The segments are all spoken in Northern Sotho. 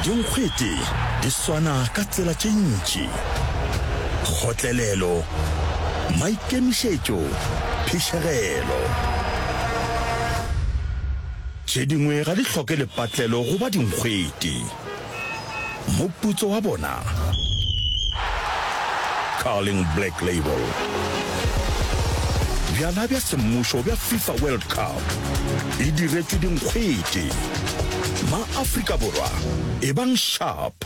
Dinkgwete di swana ka tsela tše ntši, kgotlelelo, maikemišetšo, phišegelo. Tše dingwe ga di hloke lepatlelo go ba dinkgwete. Moputso wa bona, Carling Black Label. Bjala bja semmušo bja FIFA World Cup. e diretšwe dinkgwete. Ma-Afrika Borwa, ebang sharp,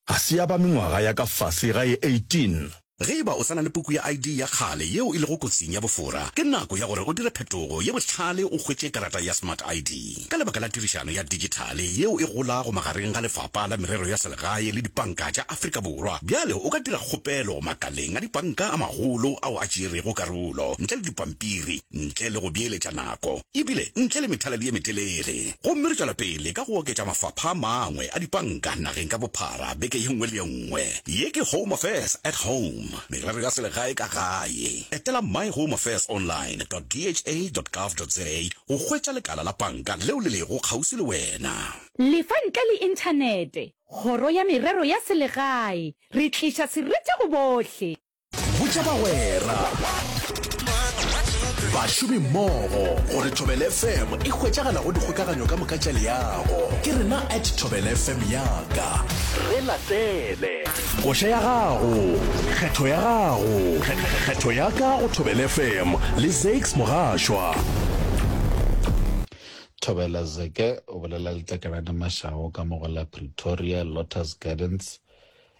ga se ya ba mengwaga ya ka fase ga e 18. Ge e ba o sa na le puku ya ID ya kgale yeo e lego kotsing ya bofora, ke nako ya gore o dire phetogo ye bohlale o hwetše karata ya Smart ID. Ka lebaka la tirišano ya digithale yeo e golago magareng ga Lefapa la Merero ya Selegae le dipanka tša Afrika Borwa, bjale o ka dira kgopelo makaleng a dipanka a magolo ao a tšeerego karolo ntle le dipampiri. ntle le go beeletša nako ebile ntle le methaladi ye metelele. Gomme re tšwela pele ka go oketša mafapha a mangwe a dipanka nageng ka bophara beke ye nngwe le ye nngwe. Ye ke Home Affairs at Home, merero ya selegae ka gae. Etela myhomeaffairsonline dot dha dot gov dot za go hwetša lekala la panka leo le lego kgauswi le wena. Le fa ntle le Inthanete, Kgoro ya Merero ya Selegae, re tliša serite go bohle. botša bagwera bašomi mmogo gore thobel fm e hwetšagala go dikgokaganyo ka moka tša leago ke rena at thobel fm yaka re latele koša ya gago kgetho ya gago kgetho ya ka go thobel fm le zax mogašwa thobela zeke o bolela letlakalane mašago ka mogo la pretoria lotus gardens